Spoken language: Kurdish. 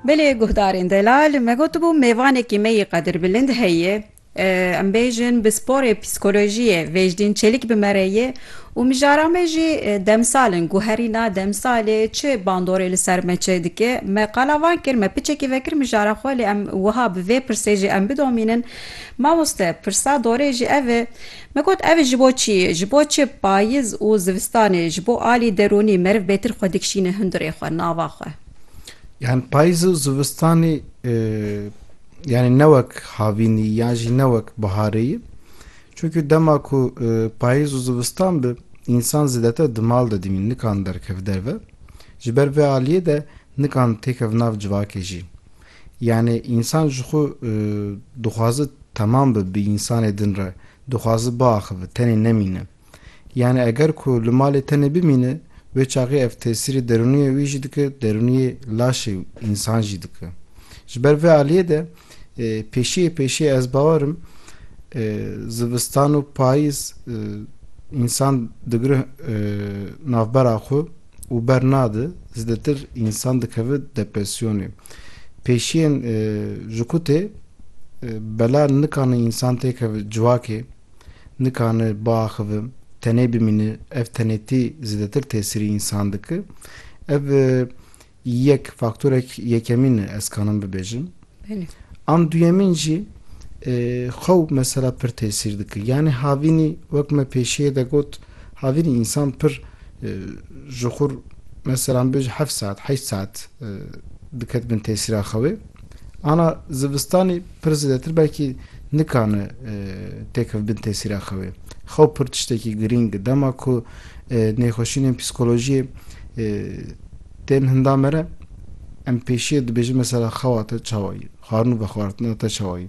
Belê guhdarên delal me gotibû mêvanekî me yê Qadir Bilind heye em bêjin bi sporê psîkolojiyê Vêjdîn Çelik bi me re ye û mijara me jî demsal in ku herîna demsalê çi bandorê li ser me çêdike me qala van kir me piçekî vekir mijara xwe lê em wiha bi vê pirsê jî em bidomînin mamoste pirsa dorê jî ev e Me got ev ji bo çi, ji bo çi payiz û zivistanê ji bo alî derûnî meriv bêtir xwe dikişîne hundirê xwe, nava xwe. Yan payiz û zivistanê yanî ne wek havînî yan jî ne wek biharê ye. Çunkî dema ku payiz û zivistan bi însan zêdetir di mal de dimîn, nikan derkeve derve. Ji ber vê aliyê de nikan têkeve nav civakê jî. Yanî însan ji xwe dixwaze temam be bi însanê din re, dixwaze biaxive, tenê nemîne. Yanî eger ku li malê tenê bimîne, wê çaxê ev tesîrê derûniyê wî jî dike, derûniyê laşê însan jî dike. Ji ber vê aliyê de pêşiyê pêşiyê ez bawer im zivistan û payîz însan digire navbera xwe, û bernade zêdetir însan dikeve depresyonê. Pêşiyên ji ku tê bela nikane însan têkeve civakê, nikane biaxive, tenê bimîne, ev tenêtî zêdetir tesîrî însan dike. Ev yek faktorek yekemîn e ez kanim bibêjim. An duyemîn jî xew mesela pir tesîr dike. Yanî havînî wek me pêşiyê de got havînî însan pir ji xwe re mesela min bêje heft saet heşt saet diket bin tesîra xewê. Ana zivistanî pir zêdetir belkî nikane têkeve bin tesîra xewê. Xew pir tiştekî girîng e. Dema ku nêxweşînên psîkolojiyê Tên hinda me re em pêşiye dibêjin mesela xewa te çawa yî, xwarin û vexwartina te çawa yî.